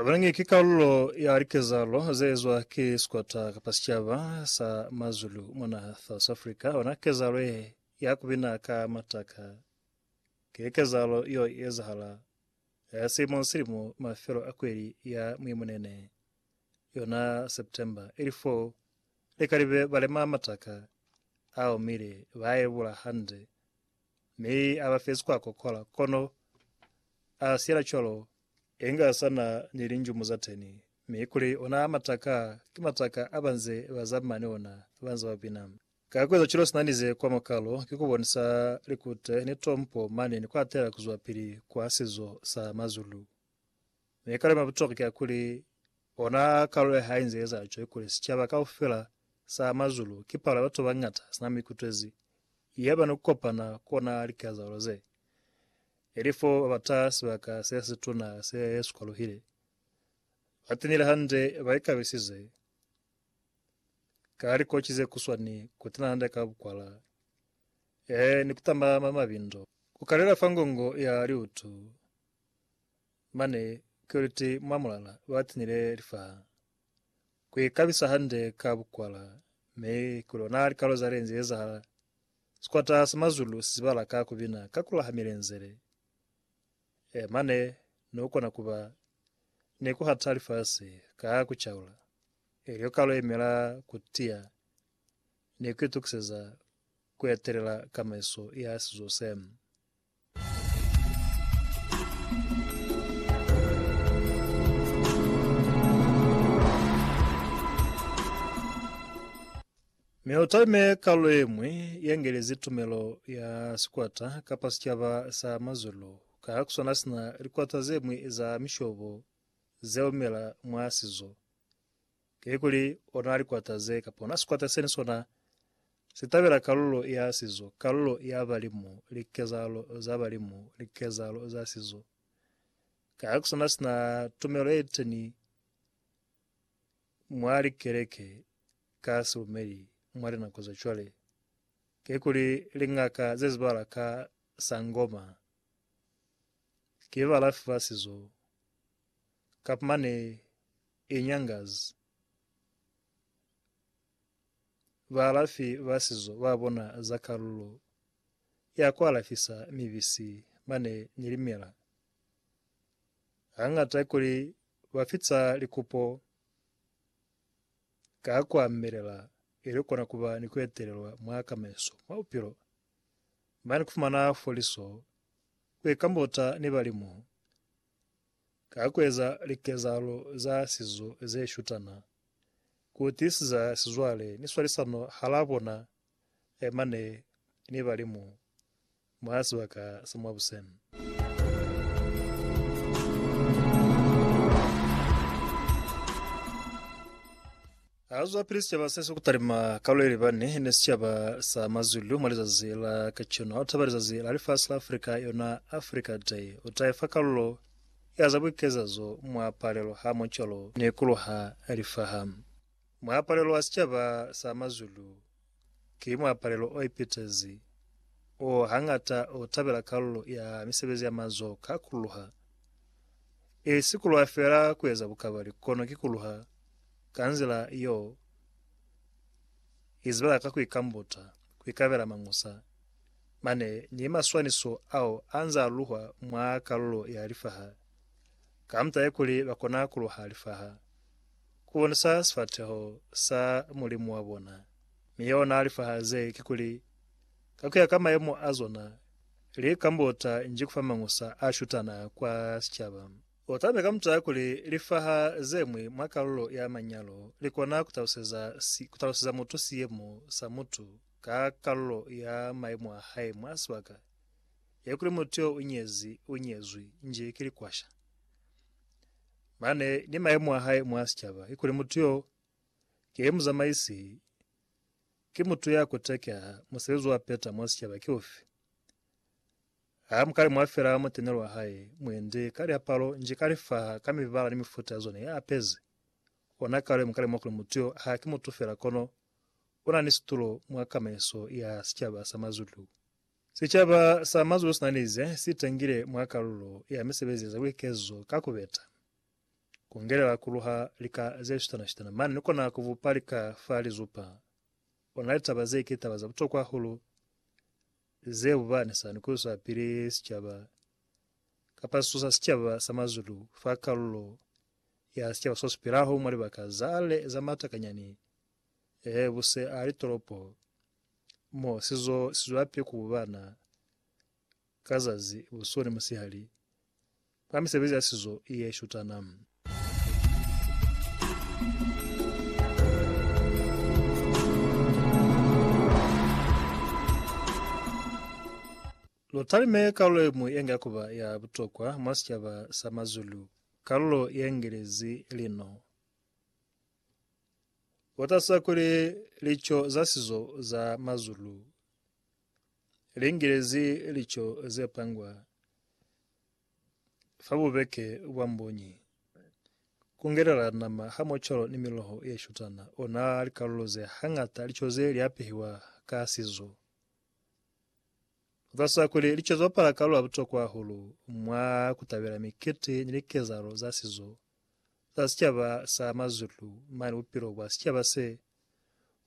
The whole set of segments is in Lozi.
Abalangi ki kalulo ya likezalo ze ezwa ki sikwata kapa sicaba sa Mazulu mona South Africa. Bona kezalo ye ya kubina ka mataka ki kezalo yo ezahala eh, silimo ni silimo mafelo a kweli ya Mwimunene. yona September ili fo lika libe balema mataka a omile ba yebula hande mi aba fezi kwa kokola kono a siyela cwalo inga sana ni linjumu za teni mi kuli ona mataka ki mataka abanze ba za mane ona banze ba bina ka kueza cwalo sina nize kwa mokalo ki kubonisa likute ni tompo mane ni kwatela kuzwa pili kwa sizo sa mazulu Maikalelo ma butokwa ki a kuli, ona kalulo ya hae inze eza cwale kuli sicaba kaufela sa mwa zulu ki palo ya batu babañata sina mikutwezi yaba ni kukopana ku ona likazalo ze, ili fo babata sibaka se situna se sikwaluhile. Batenile hande ba ikabisize ka likocwi ze kuswani kutena hande ka bukwala, ee, ni kutamba mwa mabindo. Kukalela fa ngongo ya liutu. Mane Kiriti mwa mulala lwa tinile lifaa. Ku ikabisa hande ka bukwala mi ku lona likalo za lenzi ezahala. Sikwata sa mazulu si zibala ka ku bina ka kula ha milenzele. E mane ne u kona kuba ni ku hata lifasi ka ku caula. Elyo kalo ye mela ku tiya ni ku itukiseza ku etelela kamaiso ya sizo se. Mi utalime kalu yemwi yengelezi tumelo ya sikwata kapa sicaba sa mazulu ka ha kuswana sina likwata zemwi za mishobo zeumela mwa sizo. Kikuli o na likwata ze kapona sikwata seni sona si tabela kalulo ya sizo, kalulo ya balimu, likezahalo za balimu, likezahalo za sizo. Kaya ku sona sina tumelo ye teni mwa likeleke ka silumeli mwa linako za cwale. Kikuli lingaka ze zibala ka sangoma ki balafi ba sizo, kap mane e nyangazi. Baalafi ba sizo ba bona za kalulo ya ku alafisa mibisi ba ne ni limela hañata kuli ba fica likupo ka ku amelela ili kona ku ba ni ku etelelwa mwa kamaiso mwa bupilo. Ba ni ku fumana foliso ku ikambota ni balimu Ka kueza likezahalo za sizo ze shutana, ku tiisiza sizwale ni swalisano halaa bona mane ni Balimu mwa sibaka sa mwa buseni. Haizo baprisita ba sese ku talima kalu ye libani ni sicaba sa mazulu mwa lizazi la kacenu, ha u taba lizazi la lifasi la Afrika, yona Africa Day, u ta ifa kalulo ya za buikezazo mwa palelo hamo cwalo ni ku luha lifaha mwa palelo ya sicaba sa mazulu. Ki muapalelo o ipitezi o hañata o tabela kalulo ya misebezi ya mazoho ka kuluha. E si kuluha fela ku eza bukabali, kono ki kuluha ka nzila yo izibela ka ku ikambuta, ku ikabela mañusa, mane ni maswaniso ao a nz'a luhwa mwa kalulo ya lifaha, ka mut'a ye kuli ba kona kuluha lifaha. Ku bonisa sifateho sa Mulimu wa bona. Mi yeo na lifaha ze, kikuli, ka kuya ka mayemo a zona, li ka mbota nji kufa mangusa a shutana kwa sicaba. U tamile ka mutala kuli lifaha ze mwi mwa kalulo ya manyalo li kona ku taluseza si, ku taluseza mutu siyemo sa mutu ka kalulo ya mayemo a hae mwa sibaka, ye kuli mutu yo u nyezi, u nyezwi, nji ki likwasha. Mane ni maemo a hae mwa sicaba kikuli mutu yo ki muzamaisi, ki mutu ya kutakiaha, musebezi wa peta mwa sicaba ki ufi? Ha mukale mwa fela mutenelo wa hae mwendi ka liapalo nji ka lifaha ka mibala ni mifuta ya zona ya apezi. Ona kale muka lemuha kuli mutu yo ha ki mutu fela kono una ni situlo mwa kamaiso ya sicaba sa Mazulu. Sicaba sa Mazulu sina ni ze si tangile mwa kalulo ya misebezi ya za buikezo ka ku beta, ku ngelela ku luha lika ze shutana-shutana mane ni kona ku bupa lika fa lizupa. Ona litaba ze ki taba za butokwa hahulu ze bubanisa ni ku iswapili sicaba kapa sisu sa sicaba sa Mazulu fa kalulo ya sicaba so si pilaho mwa libaka za ale za matakanyani, ee, bu se a litolopo. Mo si zo si zwape ku ba na ka zazi, busihu ni musihali, mwa misebezi ya sizo ye shutana. Lu talime kalulo ye ñwi ye nga ku ba ya butokwa mwa sicaba sa MaZulu, kalulo ye ngelezi lino. Kotaza kuli lico za sizo za Mazulu li ngilezi lico ze pangwa fa bubeke bwa mbunyi, ku ngelela nama ha mocolo ni miloho ye shutana, ona likalulo ze hañata lico ze li apehiwa ka sizo. Kotaza kuli lico li bapala kalulo ya butokwa hahulu mwa ku tabela mikiti ni likezahalo za sizo za sicaba sa mazulu mane bupilo bwa sicaba se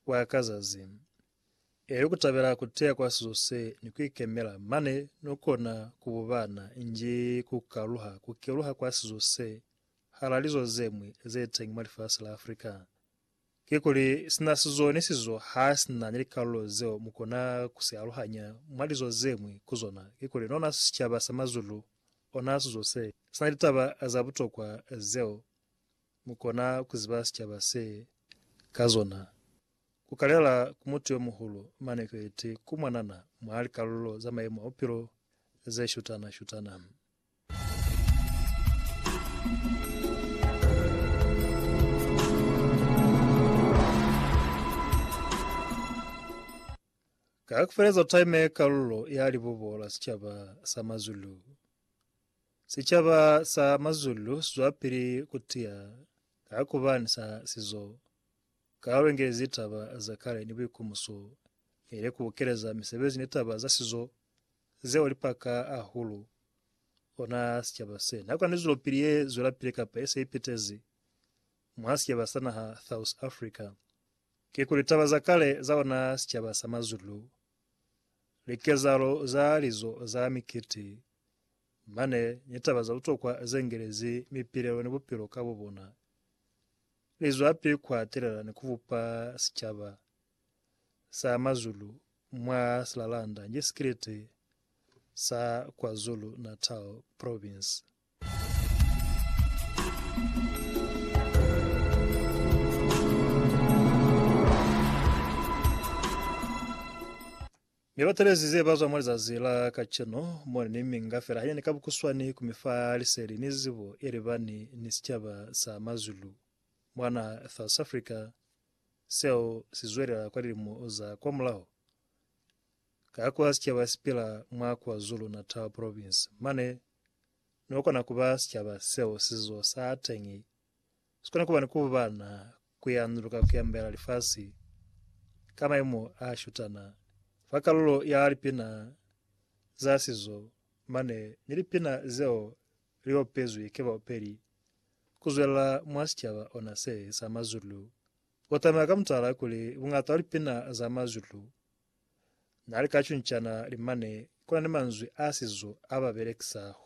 bwa ka zazi, ili kutabela kuteya kwa sizo se ni kuikemela mane no kona kububana nji kukaluha kukeluha kwa sizo se hala lizo zemwi zeteng mwa lifasi la Africa. Kikuli, sina sizo ni sizo ha si na ni likalulo zeo mu kona ku si aluhanya mwa lizo ze ñwi ku zona. Kikuli, lona sicaba sa mazulu, ona sizo se si na litaba za butokwa zeo mu kona ku ziba sicaba se ka zona. Ku kalela ku mutu yo muhulu mane Krete ku mwanana mwa likalulo za mayemo a bupilo ze shutana-shutana. Ka kufeleza time ye kalulo ya libubo la sicaba sa Mazulu. Sicaba sa Mazulu sizwapili kutiya ka kuba ni sa sizo. Kalulo ingelezi taba za kale ni buikumuso, ile kubukeleza misebezi ni taba za sizo. Zeo lipaka ahulu ona sicaba se na kona zwelopili ye zwelapile kapa ye se ipitezi mwa sicaba sa naha South Africa. Kikuli taba za kale za ona sicaba sa Mazulu, likezahalo za lizo za mikiti, mane ni taba za butokwa ze ngelezi mipilelo ni bupilo ka bobona, li zwapi ku hatelela ni ku bupa sicaba. sa Mazulu mwa Silalanda nge Sikrete sa KwaZulu-Natal Province. Mi batelezi ze bazwa mwa lizazi la kacenu mone ni minga fela hanyani ka bukuswani ku mi fa liseli ni zibo ye libani ni sicaba sa Mazulu mwa naha South Africa Seo si zwelela kwa lilimo za kwamulaho. Ka kwa sicaba sipila mwa KwaZulu-Natal Province, mane no kona kuba sicaba seo sizo sa teñi sikona kuba ni kubana kuyanuluka kuyambela lifasi ka maimo a shutana. Fa kalulo ya lipina za sizo mane ni lipina zeo Li opezwi ki baopeli ku zwelela mwa sicaba ona se sa mazulu. Ku tameka ka mutala kuli bungata wa lipina za mazulu na li ka cuncana limane ku na ni manzwi a sizo a ba belekisa hulu.